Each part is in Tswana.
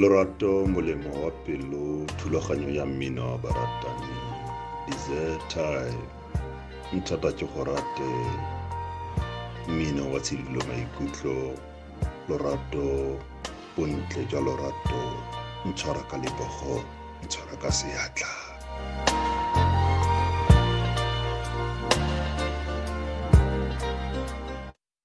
Lorato molemo wa pelo thulaganyo ya mmino wa baratani desert time nthata ke go rate mmino wa tshedilo maikutlo lorato bontle jwa lorato ntshwara ka lebogo ntshwara ka seatla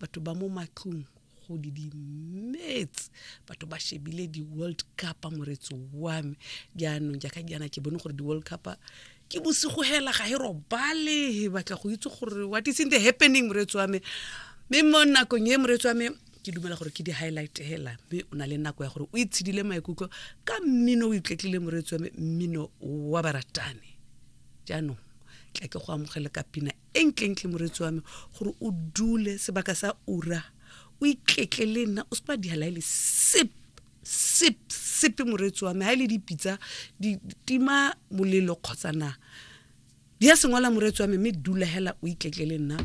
batho ba mo matlong go di dimetse batho ba shebile di-world cup moretso wa me jaanong jaaka jaana ke bone gore di-world cup ke bosigo hela ga e robale batla go itse gore what is in the happening moretso wa me mme mo nakong e moretso wa me ke dumela gore ke di-highlight hela mme o na le nako ya gore o itshedile maikutlo ka mmino o itletlile moretso wa me mmino wa baratane jaanong tla ke go amogele ka pina e ntlentle moretsi wa me gore o dule sebaka sa ura o ikletle le nna o se ba dihala ele sip sip sepe moretsi wa me ha ile dipitsa di tima molelo kgotsa na di ya sengwala moretsi wa me mme dula hela o ikletle le nna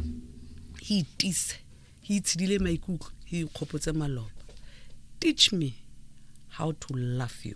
he itise he itshidile maikutlo he ikgopotse maloba teach me how to love you